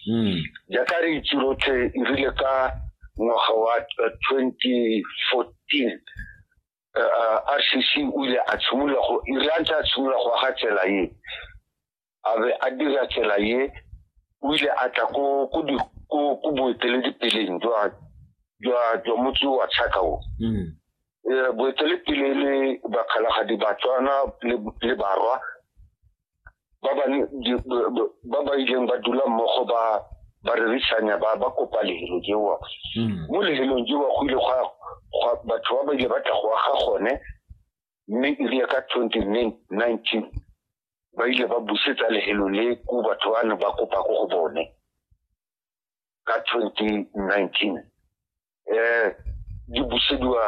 hmm. jaaka re itse rotlhe e rile ka ngwaga wa 2014 rcc o ile a tshimolola go ire a ntse a tshimolola go aga tsela ye a be a dira tsela ye o ile a tla ko boeteledipeleng jwa jwa motse wa tshaka o hmm. eh, boetelepele le bakgalagadi batswana le barwa ba ba ba ba ileng ba dula mmogo ba ba rerisanya ba ba kopa lehelo jewa hmm. mo lehelong jewa go ile gwa batho ba ba ile ba tla go aga gone mme erile ka twenty nineteen ba ile ba busetsa lehelo le ko batho ba ne ba kopa ko go bone ka twenty nineteen um di busediwa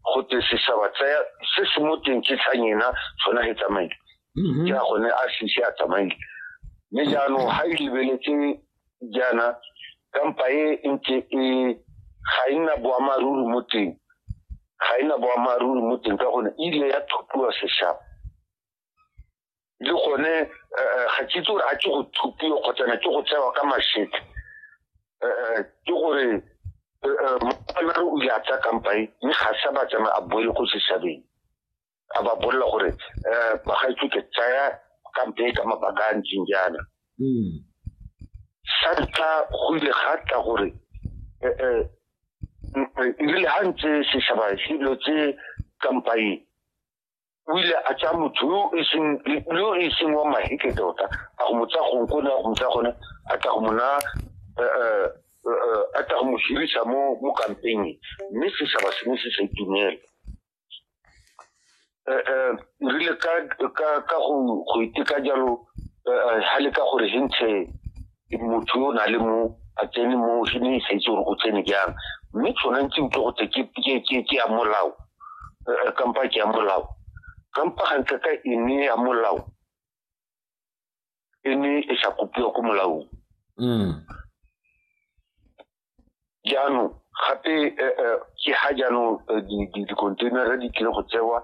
go te seshaba tsaya se se mo teng ke tlhang ena sona he tsamaile mm-hmm. ke a gone a sese a tsamaile mme jaanong ga e lebeletse jaana kampa e ntse e ga e nna boammaaruri mo teng ga e nna boammaaruri mo teng ka gone e ile ya thupiwa seshaba le gone eh, ga ke itse gore a ke go thupiwa kgotsana ke go tsewa ka mashete eh, ke gore mare o ile a tsa kampae mme ga sa ba tsama a boele ko setšhabeng a ba bolela gore um bagaitso ke tsaya kampe ka mabaka a ntseng jaana hmm. sa ntlha go ile ga tla gore ebile ga ntse setšhaba selo tse kampaeng o ile a tsaya motho yo e seng yo e seng wa mahike tota a go mo tsaya gong kone a go mo tsaya gone a tla go mo na eh, eh, eh, a tla go mo hirisa mo mo kampeng mme setšhaba se ne se sa itumela Eh, eh, rile ka ka ka go go iteka jalo eh, eh, ha le ka gore hentse motho yo o na le mo a tsene mo se ne sa itse gore go tsene jang mme tshwana ntse utlwe go tse ke ya molao eh, kampa ke ya molao kampa gantle ka e ne ya molao e ne e sa kopiwa ko molaong mm. jaanong gape eh, eh, ke ga jaanong dikontainara di tlile go tsewa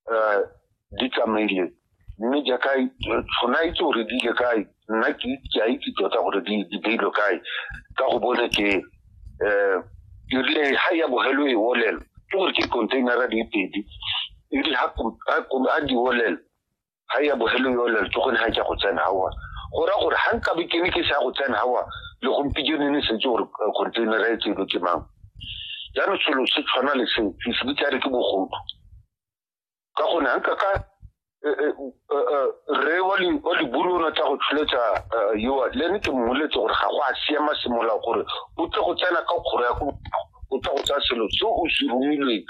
um di tsamaile mme jaaka tshona itse gore di ile kae nna ke a itse tota gore di beilwe kae ka go bone ke um erile ga ya bogelo e olela ke gore ke containera di pedi erile ga di olela ga ya bogelo yo le tsogone ga ke go tsena gawa go ra gore ga nka bokene ke sa go tsena gawa le gompieno ne setse gore eh, containera e tseno ke mang jaanong selo se tshwana le se se bitsa re ke bogodu ka gone ga nka ka eh, eh, re wa liburu o natsa go tsholetsa yoa le ne ke mmoletse gore ga go a siama semolao gore o tle go tsena ka kgoro ya ko o tle go tsaya selo se o se romilweng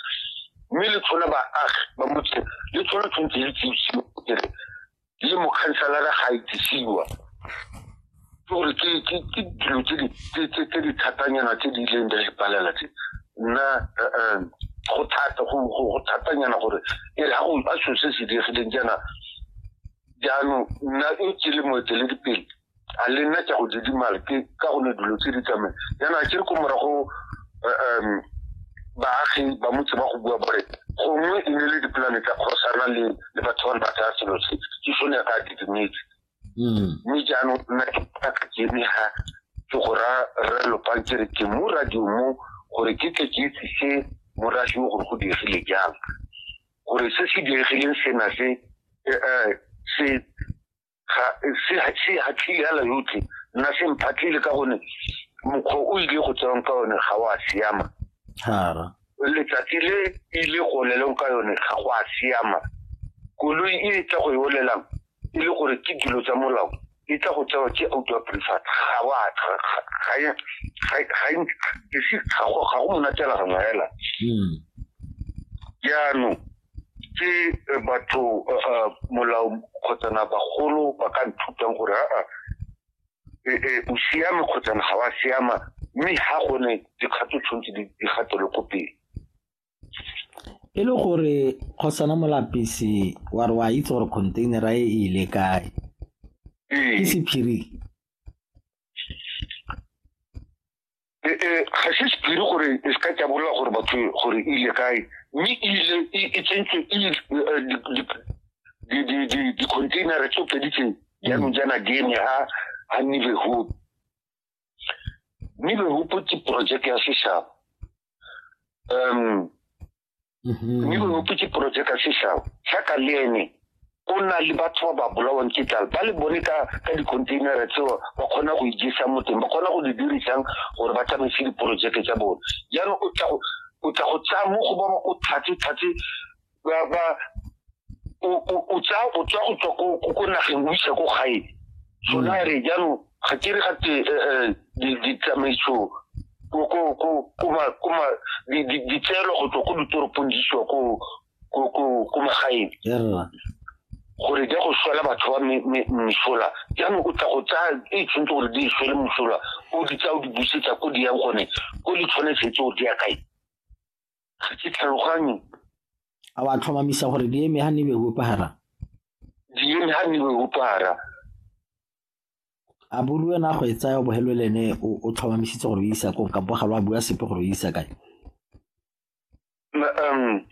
mme le tshola baagi ba motse le tshola tshwanetse le tsisiwa kere le mokhanselara ga itsisiwa ke gore ke ke ke dilo tse di tse tse tse di thatanyana tse di ileng di re palela tse nna eh, eh, go thata go go go thatanyana gore e re ha go a selo se se diregileng jaana jaanong nna e ke le moeteledipele a le nna ke go didimala ke ka gone dilo tse di tsamaye yana ke re ko morago um baagi ba motse ba go bua bore gongwe e ne le dipolane tsa kgosana le le batho ba ba tsaya selo se ke sone ya ka didimetse mm. mme jaanong nna ke ka kene ga ke go ra re lopang ke re ke mo radio mo gore ke tle ke itsise morasi o gore go diegile jang gore se se diegileng sena se eh, eh, se ga se se hatlile ala yotlhe nna se mphatlile ka gone mokgwa o ile go tsewang ka yone ga wa siama hara letsatsi le ile go leleng ka yone ga go a siama koloi e tla go e olelang e le gore ke dilo tsa molao e tla go tsewa ke auto prefat ga wa ga e ga e ga e ga go monatela ga ngwaela jaanong ke eh, batho eh, eh, molao kgotsana bagolo ba ka nthutang gore aa o siame kgotsana ga wa siama mme ga gone dikgato tshwanetse di gatele ko pele e le gore kgosana molapisi wa re wa itse gore containera e e ile kae ke sephiri e, e, ga se sephiri gore e se ka tjabolola gore batho gore e ile kae mme e ile e, e tsentswe di-containere tso pedi tse jaanong jaana di eme ha ha nive hope nive hope ke project ya seshaba um Mm-hmm. mme o opetse porojeke ka sešao jaaka le ene o na le batho ba ba bolawang ke tlala ba le bone ka ka dicontainera tseo ba kgona go ijesa mo teng ba kgona go di dirisang gore ba tsamaise diporojeke tsa bone jaanong o tla o tla go tsaya mo go ba ba o tlhatse tlhatse ba ba o tsaya o tswa go tswa ko nageng o isa ko gae sona mm. re jaanong ga ke re ga te ditsamaiso ditseelo go tswa ko ditoropong di siwa ko magaeng gore di ya go swela batho ba mesola jaanong o tla go tsaya e tshwanetse gore di e swele mosola o di tsaya o di busetsa ko di yang gone ko di tshwanetse tse o di ya kae ga ke tlhaloganye a wa tlhomamisa gore di eme ga ne be opara di eme ga ne be opara a bo le wena a go e tsaya o bo helo le ene o tlhomamisitse gore o isa ko kampo ga lo a bua sepe gore o isa kae um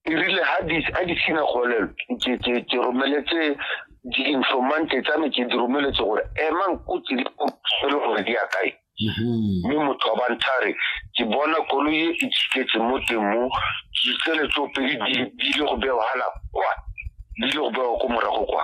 e rile ha di a di sina golelo ke ke ke romeletse di informante tsa me ke di romeletse gore emang ko tse di le gore di ya kae mm-hmm. mme motho wa bantshare ke bona koloi e e tshiketse mo teng mo ditsele tseo pedi di le go bewa hala kwa di le go bewa ko morago kwa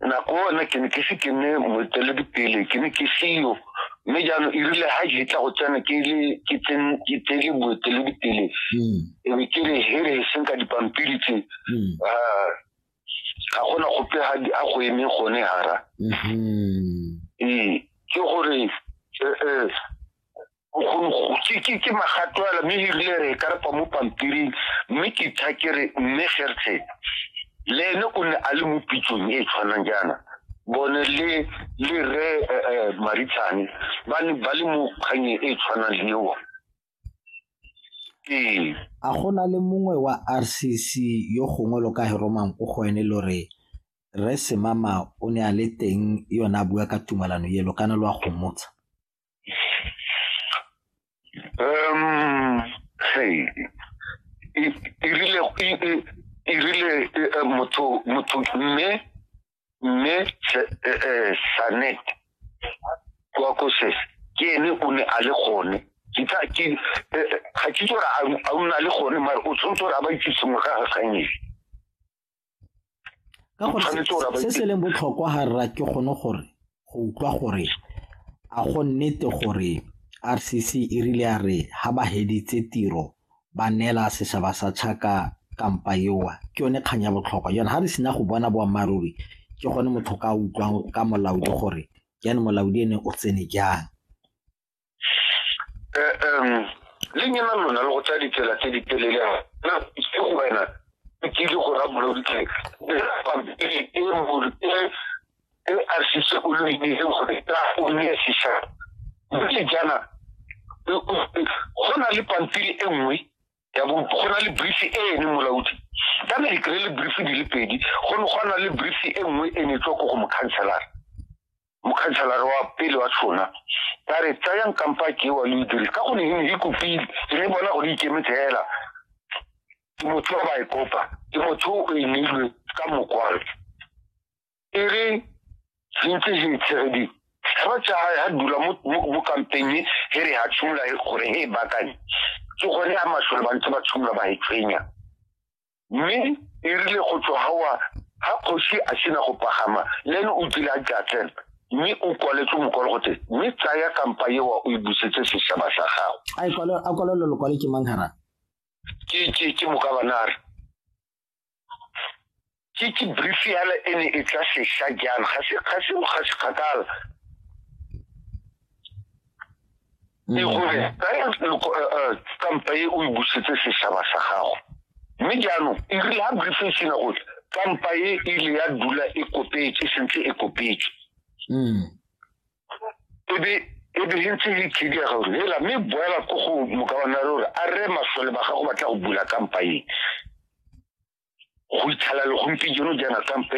nako one ke ne ke se ke ne moeteledipele ke ne ke seyo mme jaanong e rile ga ke tla go tsena ke le ke tsen- ke tsele boeteledipele Mm, e be ke re here e seng ka dipampiri tse mm, ah, ga gona gope ga di- a go emeng gone hara mhm. ee ke gore eh, eh, ke magato ala mme erile re ka repa mo pampiring mme ke tha ke re mme gerthe le ene o ne a le mo pitsong e e tshwanang jaana bone le le re eh, eh, maritshane ba ne ba le mo kganyeng e e tshwanang le eo ee a go na le mongwe wa rcc yo gongwe lo ka heromang ko go ene lo re re semama o ne a le teng yone a bua ka tumalano elo kana lo a gomotsha um hey e e rile e- e- e rile eh, eh, motho motho mme mme Se- eh, eh, sanet kwa koses ke ene o ne a le gone ke tla ke eh, eh, ga ke tsora a o na le gone mare o tshwanetse gore a ba itse sengwe ka ga kganyedi ka gore se se leng botlhokwa ga rra ke gone gore go utlwa gore a go nnete gore RCC e rile ya re ha ba heditse tiro ba neela setšhaba sa Chaka kampa ewa ke yone kgang ya botlhokwa yone ha re sena go bona boammaaruri ke gone motho ka utlwang ka molaodi gore jane molaodi ene o tsene jang um le nyena lona le go tsaya ditsela tse di telele na ke go wena e kile go ra boloditse pampiri e molo e e a sise o lo ine gore ta o ne sisa mme jana go na le pampiri e nngwe ya bo go na le brief e ene molaodi ka ne dikry le brief di le pedi go ne go na le brief e nngwe e ne tswa ko go mokhanselara mokhanselara wa pele wa tshona ba re tsayang kampa kewa le dire ka gonne e ne e kopile e ne bona gore ikemetse fela ke motho ba e kopa ke motho o e neilwe ka mokwalo e re sentse se itshegedi ga tsa ha dula mo kampeng e re ha tshumula gore e bakanye ke gone a masole ba ntse ba tshumula ba e tshwenya mme e rile go tswa gawa ga kgosi a sena go pagama le ene o kile a jatleng mme o kwaletse mokwalo gote mme tsaya kampa ewa o e busetse setšhaba sa gago a kwalelo lokwale ke mang harang ke mokabanare ke ke brief yana e ne e tla sesha jang ga se kgakala e gore tsaya stampa e o e busetse setšhaba sa gago mme jaanong e rile ga briefing sena gore stampa e ile ya dula e kopetse sentse e kopetse mm. ebe e be e ntse e khidia gore hela mme boela ko go mokabanare gore a re masole ba gago batla go bula kampa e go ithala le gompieno jaana kampa e